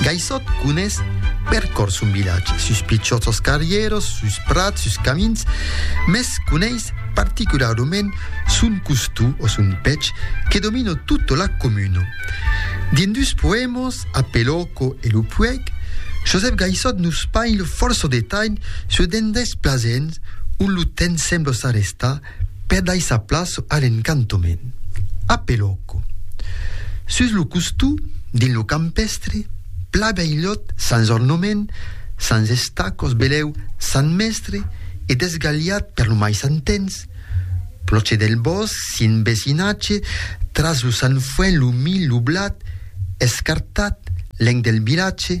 Gaissòt conés per còr son vilatge, sus pichòts sos carrieros, sus prats, sus camins, mès coneis particularament son costum o son pech que domino tota la comuna. Dins dus poèmas, A Pelòco e Lo Puèg, Josèp Gaissòt nos païl fòrça detalh sur d'endais plasents ont lo temps sembla s'arrestar, per daissar plaça a l'encantament. A Pelòco. Sus lo costó, dins lo campèstre, pla veilhòt sens ornament, sens estacòs belèu Sant Mèstre e desgalhat per lo mai Sant Tens, Plòche del Bòsc, Sint Vesinatge, tras lo Sant Fuèn lo Milh lo Blat, escartat, lenc del vilatge,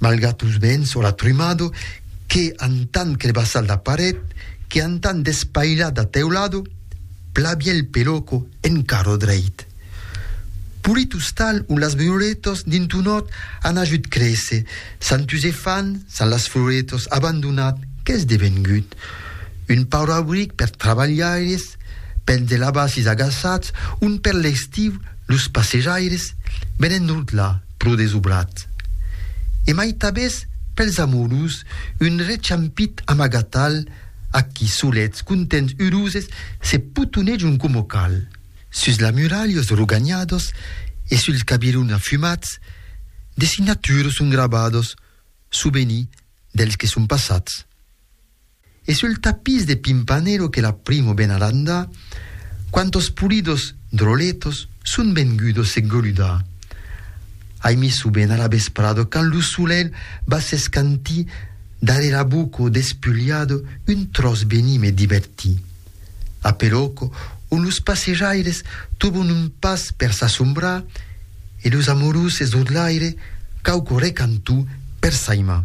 Malgrat los vents o la trumado, que antan crebassar la paret, que antan despailar la teulado, plabien el peloco en carro dreit. Polit ostal ont las violetos dins un hòt an ajut créser, s'an tus e fan, s'an las floretos abandonat, qu'es devengut? Un paur abric per trabalhaires, pels de labacis agaçats, ont per l'estiu los passejaires venen rotlar. pro desobrat. E mai tabes pels amorus un rechampit amagatal a qui solets contents uroses se potonejon coma cal. Sus la muralhos roganhados e suls cabirons afumats de signaturos son gravados souveni dels que son passats. E sul tapís de Pimpanelo que la primo benadanda, quantos pulidos droletos son vengudos se goludar. Ai mis su bena la vesprado quand lo solelh va s'escanti dare la boco despuliado un tros beni me diverti. A Peloco on los passejaires tobon un pas per s'assombrar e los amoroses d'Odlaire quauqu recantó per s'aimar.